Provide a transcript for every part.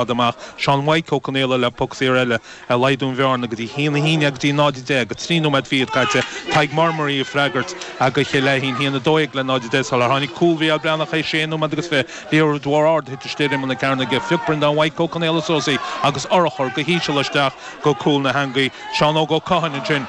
Fág amach Seán Mhaidhc Ó Conaola le poc saor eile a laghdú an bhearna go dtí a haon a haon déag go dtí 0 10, 3 nóiméad fichead caite, Tadhg Marmaray ag freagairt do Chill Fheichín, Haon a dó dhéag le 0 10 sular tháinig cúl Mhicheál Breathnach théis sé nóiméad agus fiche, Liathróid mhór ard a thit istigh ar imeall na cearnaige, phioc Breandán Mhaidhc Ó Conaola suas í agus urchar go híseal isteach go cúl na heangaí, Seán Óg Ó Catháin ansin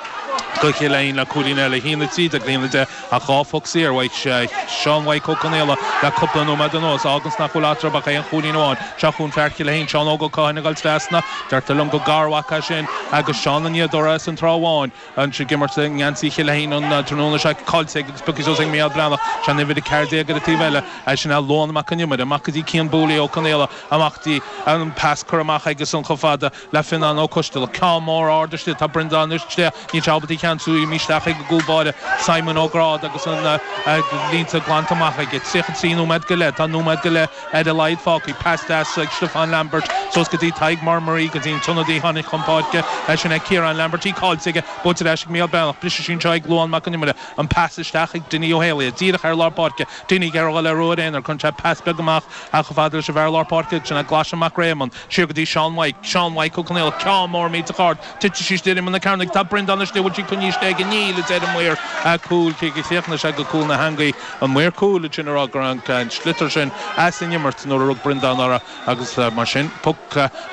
do Chill Fheichín le cúilín eile, 1 13 le 1 10. Ach dhá phoc saor, aimsithe ag Seán Mhaidhc Ó Conaola le cúpla nóiméad anuas, fágann sin nach bhfuil eatarthu ach aon chúilín amháin, Seo chugainn fear Chill Fheichín, Seán Óg Ó Catháin ag goil trasna. Deirtear liom gur garmhac é sin ag Seán an Fhíodóra as an Trá Bháin. Ansin ag imirt i ngeansaí Chill Fheichín an tráthnóna seo caillte aige agus pioctha suas ag Mícheál Breathnach, sin uimhir a ceathair déag ar an taobh eile, é sin é Luan Mac an Iomaire. Amach go dtí Cian Búlaí Ó Conaola amach go dtí, an pas curtha amach aige ansin chomh fada le Fionnán Ó Coistealbha, Ceann Mór, ard isteach, tá Breandán istigh, Níl sé ábalta í a cheansú, imithe isteach chuig an gCúl Báire, Simon Ó Gráda agus na línte glanta amach aige. 33 nóiméad go leith Tá nóiméad go leith ar a laghad fágtha. Pas deas ag Stiofán Lambert suas go dtí Tadhg Marmaray, go dtí an t-ionadaí a tháinig chun páirce. Sin é Ciarán Lambert. Í caillte aige. Buailte ar ais ag Mícheál Breathnach. Briseann sí anseo ag Luan Mac Con Iomaire. An pas isteach chuig Dinny Ó hÉalaithe. Díreach ar lár páirce. Dinny ag iarraidh a dhul ar ruathar aonair. Cuireann sé pas beag amach ach chomh fada leis an bhfear lár páirce agus sin é Glaise Mac Réamoinn. siar go dtí Seán Mhaidhc, Seán Mhaidhc Ó Conaola, Ceann Mór millteach Ard, Titfidh sí istigh ar imeall na cearnaige, Tá Breandán istigh, Bhfuil sí coinnithe istigh aige? Níl, a deir an maor cúil cé gur chríochnaigh sé go cúl na heangaí, an maor cúil, iad sin ag rá go raibh an sliotar sin as an imirt nuair a rug Breandán uirthi agus mar sin poc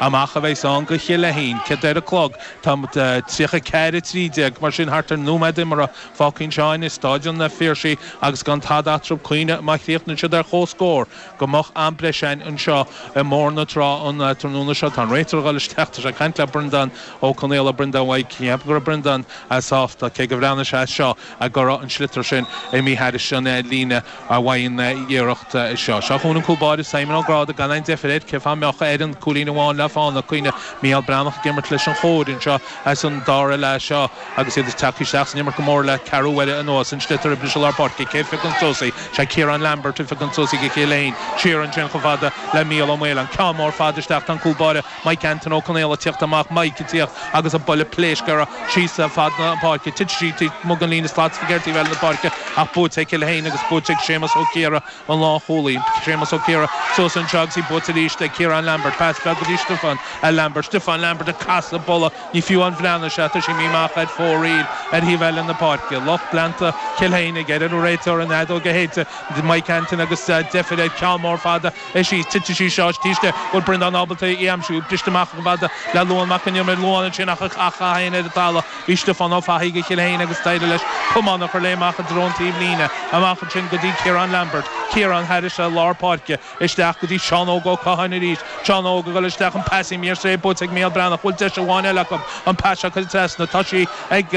amach a bheas ann go Cill Fheichín, Caite ar an gclog, Tá tríocha ceathair a trí déag mar sin thart ar nóiméad imeartha, fágtha anseo i Staid an Phiarsaigh agus gan tada eatarthu cuimhnigh má chríochnaíonn siad ar comhscór. go mbeidh am breise againn anseo i mBóthar na Trá an tráthnóna seo. Tá an Réiteoir ag dul isteach. Tá sé ag caint le Breandán Ó Conaola. Breandán Mhaidhc, ní cheapaim go raibh Breandán sásta, cé gur bhreathnaigh sé as seo, go raibh an sliotar sin imithe thairis an líne ba mhaith an iarracht í seo. Seo chugainn an cúl báire, Simon Ó Gráda, gan aon deifir air. Cé fáth a mbeadh? Aon chúilín amháin le fána, cuimhnigh. Mícheál Breathnach ag imirt leis an chóir anseo. ins an dara leath seo agus iad ag teacht isteach san imirt go mór le ceathrú uaire anuas, an sliotar ag briseadh lár páirce. Cé a phiocann suas í? Is é Ciarán Lambert a phiocann suas í do Chill Fheichín. Siar ansin chomh fada le Mícheál Ó Maoláin. Ceann mór fada isteach. Tá an cúl báire Mike Antaine Ó Conaola ag tíocht amach. Mike ag tíocht agus an buille pléasctha air síos fad na páirce. Titfidh sí, amuigh ag an líne slat sa gceird taobh eile na páirce ach buaite ag Cill Fheichín agus buaite ag Séamus Ó Ciardha. an lánchúlaí. Séamus Ó Ciardha suas anseo agus í buailte arís ag Ciarán Lambert. Pas beag go dtí Stiofán Lambert. Stiofán Lambert ag casadh buille. Ní fiú breathnú air seo. Tá sí míle amach ar fóraoil ar thaobh eile na páirce. Lucht leanta Chill Fheichín ag iarraidh ar an réiteoir. An fheadóg a shéideadh. Mike Antin agus deifir air. Ceann mór fada é síos. Titfidh sí seo. Is tíste go bhfuil Breandán ábalta í a aimsiú. Briste amach chomh fada le Luan Mac Con Iomaire. Luan ansin á chaitheamh féin ar an talamh. Bhí Stiofán Ó Fathaigh go Chill Fhéinn agus d'éirigh leis camán a chur léi amach i dtreo an taobhlíne, amach ansin go dtí Ciarán Lambert, Ciarán thairis i lár páirce, isteach go dtí Seán Óg Ó Catháin arís, Seán Óg ag dul isteach, an pas i mír sé buaite ag Micheál Breathnach, bhfuil deis amháin eile acu, an pas seo curtha trasna, tá sí ag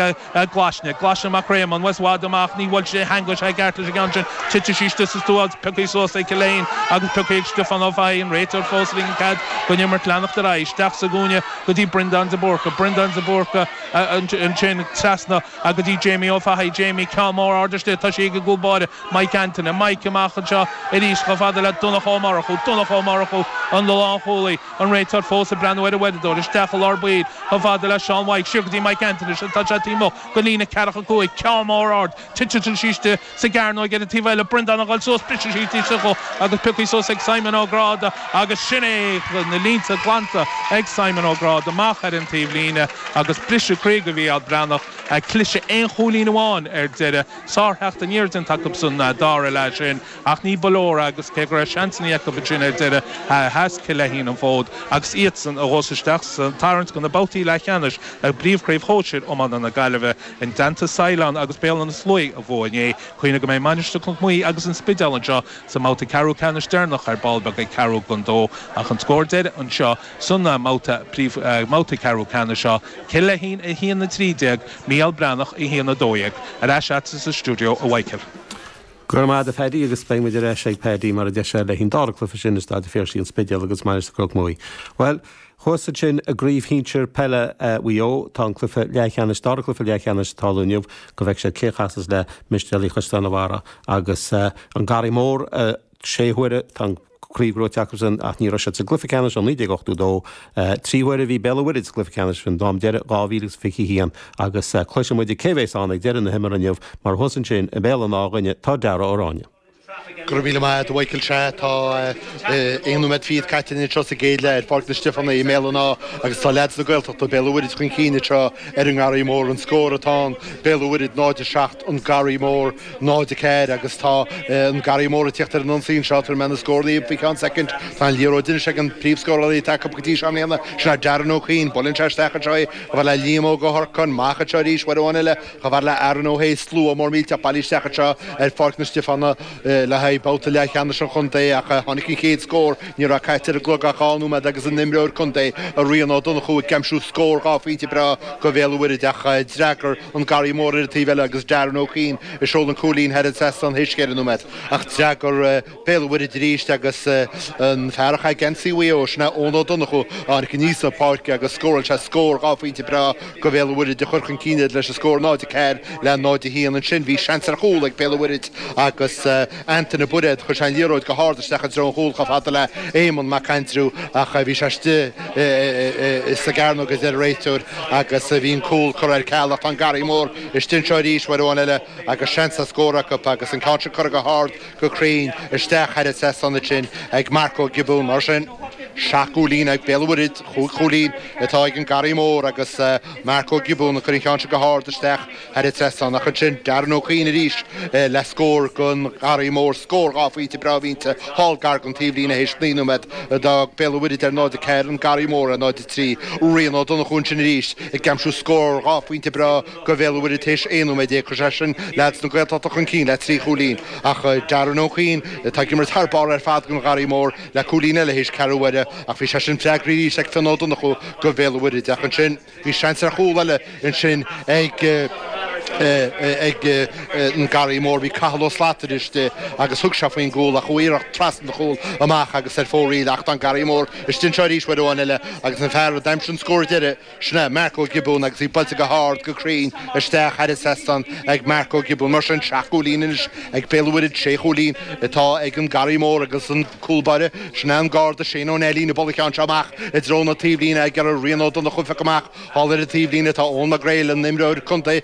Glaisne, Glaisne Mac Réamoinn, bhuel, is i bhfad amach, ní bhuail sé, theangaigh sé i gceart leis an gceann sin, titfidh sí istigh sa stua agus pioctha suas ag Cill Fhéinn agus pioctha ag Stiofán Ó Fathaigh, an réiteoir fós ag ligean cead don imirt leanacht ar aghaidh, isteach sa gcúinne, go dtí Breandán de Búrca, Breandán de Búrca, ansin trasna go dtí Jamie Ó Fathaigh, Jamie, ceann mór ard isteach, tá sí ag an gcúl báire, Mike Antaine, Mike, amach anseo arís chomh fada le Donncha Ó Murchú, Donncha Ó Murchú, an lánchúlaí, an réiteoir fós ag breathnú ar an uaireadóir, isteach i lár baill chomh fada le Seán Mhaidhc, siar go dtí Mike Antaine, ansin tá sé taobh amuigh den líne ceathracha cúig, ceann mór ard. Titeann sí istigh sa gcearnóig ar an taobh eile, Breandán ag dul suas, briseann sí di sa ghuth agus pioctha suas ag Simon Ó Gráda agus sin é! Na línte glanta ag Simon Ó Gráda amach ar an taobhlíne agus briseadh croí go Mhícheál Breathnach, a cliseadh aon chúilín amháin ar deireadh. Sártheacht aniar déanta acu sa dara leath sin ach ní ba leor agus cé go raibh seansannaí acu ansin ar deireadh, sheas Cill Aithín an fód agus iadsan a ghabhas isteach sa tarraingt go na babhtaí leathcheannais i bPríomhchraobh Shóisir Iomána na Gaillimhe. I dteannta Saighleáin agus Béal Átha na Sluaighe a bhuaigh inné, cuimhnigh go mbeidh Mainistir Chnoc Muí agus an Spidéal anseo sa mbabhta ceathrú ceannais deireanach ar ball beag ag ceathrú don dó ach an scór deiridh anseo sa mbabhta ceathrú ceannais seo, Cill Fheichín 1, 13, Mícheál Breathnach 1, 12. Ar ais agat sa stiúideo, a Mhichael. Go raibh maith agat, a Phaddy agus beidh muid ar ais ag Paddy mar a deir sé le haghaidh an dara cluiche sin i Staid a' Phiarsaigh, an Spidéal agus Mainistir Chnoc Muí. Bhuel, Thuas ansin i gcraobh shinsir peile Mhaigh Eo, tá an cluiche leathcheannais, dara cluiche leathcheannais atá ar siúl inniu, go bhfeice siad cé chasas le Mistéalaigh Chaisleán an Bharraigh agus An Garraí Mór. Sé huaire atá an chraobh gnóite acusan ach ní raibh siad sa gcluiche ceannais ó 1982. Trí huaire a bhí Béal an Mhuirthead sa gcluiche ceannais an ceann deiridh, 2021, agus cloisfidh muid cé a bheas ann ag deireadh na himeartha inniu mar thuas ansin i mBéal an Átha dúinne tá Darragh Ó Ráinne. Go raibh míle maith agat, a Mhichael. Sea. Tá aon nóiméad fichead caite anseo sa gcéad leath ar Pháirc na Stiofánach i mBéal an Átha agus tá leaids na Gaeltachta, Béal an Mhuirthead chun cinn anseo ar an nGarraí Mór. An scór atá ann, Béal an Mhuirthead 0, 7, An Garraí Mór 0, 4 agus tá an Garraí Mór ag tíocht ar an ionsaí anseo tabharfaidh mé na scórálaithe faoi cheann soicind. Tá an liathróid anois ag an bpríomhscórálaí atá acu go dtí seo i mbliana, sin é Darren Ó Cuinn. Buaileann sé isteach anseo é le Liam Óg Ó hOrcáin. Amach anseo arís, uair amháin eile. Chomh fada le Aaron Ó hAodh slua mór millteach bailithe isteach anseo ar Pháirc na Stiofánach le haghaidh babhta leathcheannais an chontae ach tháinig an chéad scór, ní raibh caite ar an gclog ach dhá nóiméad agus an imreoir contae, Rian Ó Donnchú, ag aimsiú scór dhá phointe breá go Bhéal an Mhuirthead ach d'fhreagair an Garraí Mór ar an taobh eile agus Darren Ó Cuinn a sheol an cúilín thar an trasnán tar éis ceithre nóiméad ach d'fhreagair Béal an Mhuirthead arís agus an fear a chaith geansaí Mhaigh Eo, sin é Eoin Ó Donnchú, aníos an pháirc agus scóráil sé scór dhá phointe breá go Bhéal an Mhuirthead a chuir chun cinn iad leis an scór 0-4 le 0-1. Ansin bhí seans ar chúl ag Béal an Mhuirthead agus Antaine Bairéad, chuir sé an liathróid go hard isteach i dtreo an chúil chomh fada le Éamonn Mac Aindriú ach bhí sé istigh sa gcearnóg a deir an réiteoir agus bhí an cúl curtha ar ceal ach tá an Garraí Mór istigh anseo arís uair amháin eile agus seans ar scór acu agus an ceann sin curtha go hard go cruinn isteach thar an trasnán ansin ag Mark Ó Giobúin. Mar sin, seacht gcúilín ag Béal an Mhuirthead, chúig chúilín atá ag an Garraí Mór agus Mark Ó Giobúin ag cur an cheann sin go hard isteach thar an trasnán. Ach ansin, Darren Ó Cuinn arís le scór don Gharraí Mór, scór dhá phointe breá mhínte thall gar don taobhlíne théis naoi nóiméad. D'fhág Béal an Mhuirthead ar 0-4, an Garraí Mór ar 0-3. Rian Ó Donnchú ansin arís ag aimsiú scór dhá phointe breá. go Bhéal an Mhuirthead tar éis 11 nóiméad chuir sé sin leaids na Gaeltachta chun cinn le trí chúilín ach, Darren Ó Cuinn atá ag imirt thar barr ar fad don Gharraí Mór le cúilín eile théis ceathrú uaire ach bhí sé sin freagraithe arís ag Fionn Ó Donnchú go Bhéal an Mhuirthead. Ach ansin bhí seans ar chúl eile ansin ag an Garraí Mór, bhí Cathal Ó Slatara istigh agus thug sé faoin gcúl ach chuaigh an iarracht trasna an chúil amach agus ar fóraoil ach tá an Garraí Mór istigh anseo arís uair amháin eile agus an fear a d'aimsigh an scór deiridh, sin é Mark Ó Giobúin agus í buailte go hard, go cruinn, isteach thar an trasnán ag Mark Ó Giobúin. Mar sin, seacht gcúilín anois ag Béal an Mhuirthead, sé chúilín atá ag an Garraí Mór agus an cúlbáire, sin é an Garda Shane Ó Neilín, ag bualadh an cheann seo amach i dtreo na taobhlíne ag iarraidh Rian Ó Donnchú a phiocadh amach. Thall ar an taobhlíne, tá Eoghan Mac Gréil, an t-imreoir contae,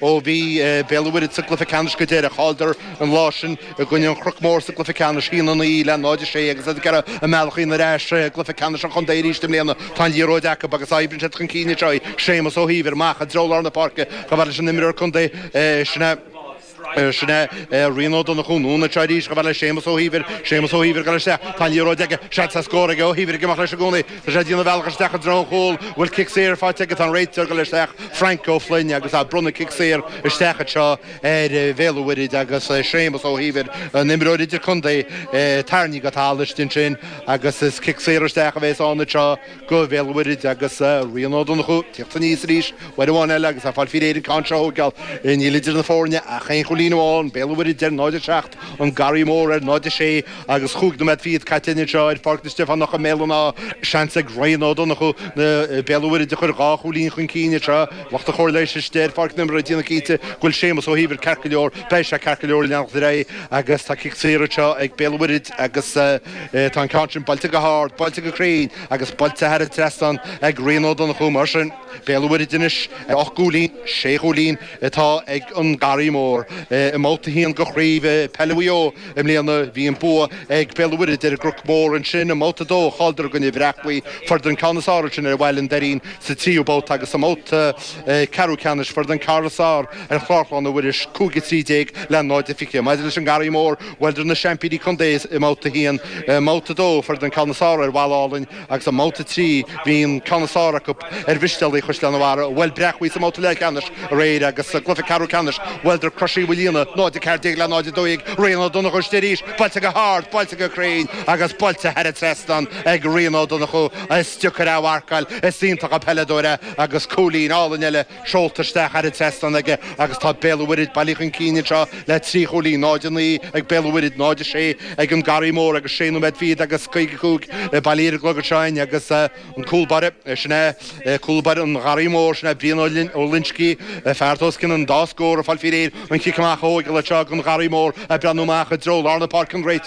Ó bhí Béal an Mhuirthead sa gcluiche ceannais go deireadh, chailleadar an lá sin i gcoinne an Chnoc Mór sa gcluiche ceannais, 1-9 le 0-6, agus iad ag iarraidh a mbealach a dhéanamh ar ais i gcluiche ceannais an chontae arís i mbliana. Tá an liathróid acu agus oibríonn siad chun cinn anseo í. Séamus Ó hÍomhair, amach i dtreo lár na páirce, chomh fada leis an imreoir contae, sin é Rian Ó Donnchú, anonn anseo arís chomh fada le Séamus Ó hÍomhair, Séamus Ó hÍomhair ag dul isteach, tá an liathróid aige, seans ar scór aige, Ó hÍomhair ag imeacht leis i gcónaí. Tá sé ag déanamh a bhealach isteach i dtreo an chúil. An bhfuil cic saor faighte aige. Tá an réiteoir ag dul isteach, Frainc Ó Floinn, agus tá ag bronnadh cic saor isteach anseo ar Bhéal an Mhuirthid agus Séamus Ó hÍomhair, an t-imreoir idir-contae, tarraingthe go talamh istigh ansin agus is cic saor isteach a bheas ann anseo go Bhéal an Mhuirthid agus Rian Ó Donnchú ag tíocht aníos arís, uair amháin eile agus ag fáil faoi réir an ceann seo a thógáil. Níl idir na foirne ach aon chúilín amháin, Béal an Mhuirthid ar 0-7. an Garraí Mór ar 0 6 agus chúig nóiméad fichead caite anseo ar Pháirc na Stiofánach i mBéal an Átha. Seans ag Ryan Ó Donnchú na Béal an Mhuirthead a chur dhá chúilín chun cinn anseo lucht an chóir leighis istigh ar pháirc na himeartha ag déanamh cinnte go bhfuil Séamus Ó hÍomhair ceart go leor. Beidh sé ceart go leor leanacht ar aghaidh agus tá cic saor anseo ag Béal an Mhuirthead agus tá an ceann sin buailte go hard, buailte go cruinn agus buailte thar an trasnán ag Ryan Ó Donnchú. Mar sin, Béal an Mhuirthead anois ocht gcúilín, sé chúilín. atá ag an Garraí Mór. I mbabhta a haon de Chraobh Peile Mhaigh Eo i mbliana, bhí an bua ag Béal an Mhuirthead ar an gCnoc Mór. Ansin, i mbabhta a dó, chailleadar i gcoinne Bhréachmhaí, fuaireadar an ceann is fearr ansin ar Bhealach an Doirín, sa tríú babhta agus i mbabhta ceathrú ceannais fuaireadar an ceann is fearr ar Chlár Chlainne Mhuiris, 5-13 le 0-20. Maidir leis an nGarraí Mór, bhuaileadar na seaimpíní contae i mbabhta a haon. I mbabhta a dó, fuaireadar an ceann is fearr ar Bhalla Álainn, Agus i mbabhta a trí, bhí an ceann is fearr acu ar Mhistéalaigh Chaisleán an Bharraigh, bhuel, Bréachmhaigh sa mbabhta leathcheannais aréir agus sa gcluife ceathrú ceannais, bhuaileadar Crois Uí Mhaoilíona, 0-14 le 0-12, Ryan Ó Donnchadha istigh arís, buailte go hard, buailte go cruinn agus buailte thar an trasnán ag Ryan Ó Donnchadha, is diocair é a mharcáil, is iontach an peileadóir é agus cúilín álainn eile. seolta isteach thar an trasnán aige agus tá Béal an Mhuirthid bailithe chun cinn anseo le trí chúilín, 0-9 ag Béal an Mhuirthid, 0-6 ag an Garraí Mór agus sé nóiméad fichead agus caoga a cúig bailithe ar an gclog anseo in agus an cúl báire, sin é cúl báire an Gharraí Mór, sin é Brian Ó Loinscigh, fear atá os cionn an dá scór ag fáil faoi réir an chic amach a thógáil anseo ag an Garraí Mór ag breathnú amach i dtreo lár na páirce an réiteoir.